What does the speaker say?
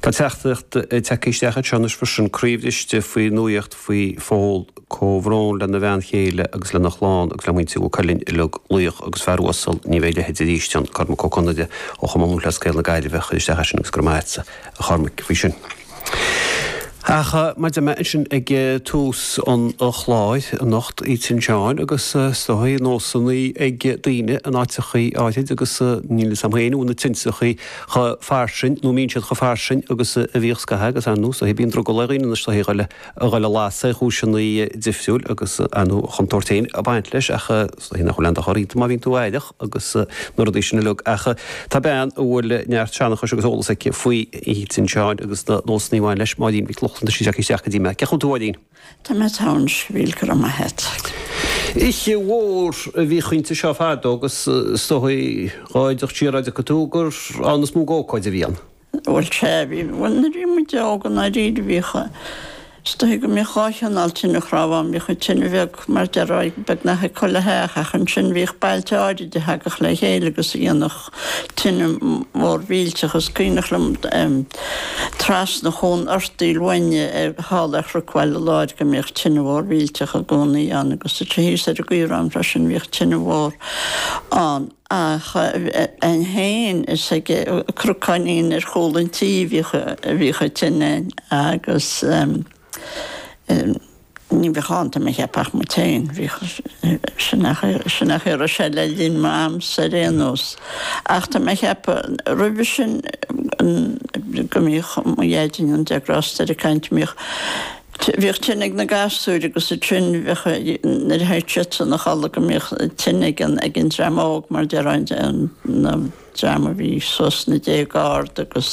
Tá teachtaireacht ag teacht isteach anseo anois freisin, croíbhriste faoi nuaíocht faoi Phól. Comhbhrón lena bhean chéile agus lena chlann agus le muintir Mhaigh Cuilinn uilig. Laoch agus fear uasal, ní bheidh a leithéid arís ann. Cormac Ó Conaill ó Chumann Lúthchleas Gael na Gaillimhe a chuir isteach é sin agus go raibh maith a't a Chormaic faoi sin. Ach mar a dúirt mé ansin ag tús an chláir anocht Oíche Fhéile tSin Seáin agus is dóigh nósanna ag daoine in áiteachaí áirid agus níl 'fhios a'm féin an bhfuil na tinteachaí chomh fairsing nó an mbíonn siad chomh fairsing agus a bhíodh scaitheamh agus ar ndóigh is dóigh bíonn drogall ar dhaoine anois is dóigh iad a lasadh ar chúiseanna difriúil agus ar ndóigh an chontúirt féin ag baint leis ach is dóigh nach bhfuil aon dochar iontu má bhíonn tú aireach. agus na rudaí sin uilig ach tá bean a bhfuil neart seanchais agus eolas aici faoi Oíche tSin Seáin agus na nósanna a bhain leis, Máirín Mhic Lochlainn, tá sí tagtha isteach go dtí mé. Cén chaoi a bhfuil tú a Mháirín? Tá mé togha slán a bheas go raibh maith a't. Oíche mhór a bhíodh inti seo fadó agus is dóigh dhá fhad siar dá dtéadh tú gur ann is mó d'ócáid a bhí ann. Bhuel, sea, bhí, bhuel nuair a bhí muid óg i ndáiríre bhíodh, is dóigh go mbíodh dhá chineál tine chnámh ann, bhíodh an tine bheag mar a déarfá beagnach ag chuile theach ach ansin bhíodh bailte áirid a thagadh le chéile agus a dhéanadh tine mhór mhillteach. Is cuimhneach liom em trasna chuan Fhear Tíre Loinge thall ar Chruc Bhaile Láir go mbíodh tine mhór mhillteach i gcónaí ann agus thíos ar an gCaorán freisin bhíodh tine mhór ann. againn fhéin is ag Cnoc Uí Choinín ar chúl an tí a bhíodh an tine agus ní bhíodh ann tá mé a cheapadh ach muid féin, sin an chaoi a raibh sé le linn m'amsa ar aon nós ach tá mé a cheapadh roimhe sin go mbíodh mo dheaidín go ndéana Dia grásta air ag caint, go mbíodh. Bhíodh tine ag na gasúir agus ansin bheadh, nuair a théadh siadsan a chodladh go mbíodh tine ag an dream óg mar a déarfá an dream a bhí suas sna déaga ard agus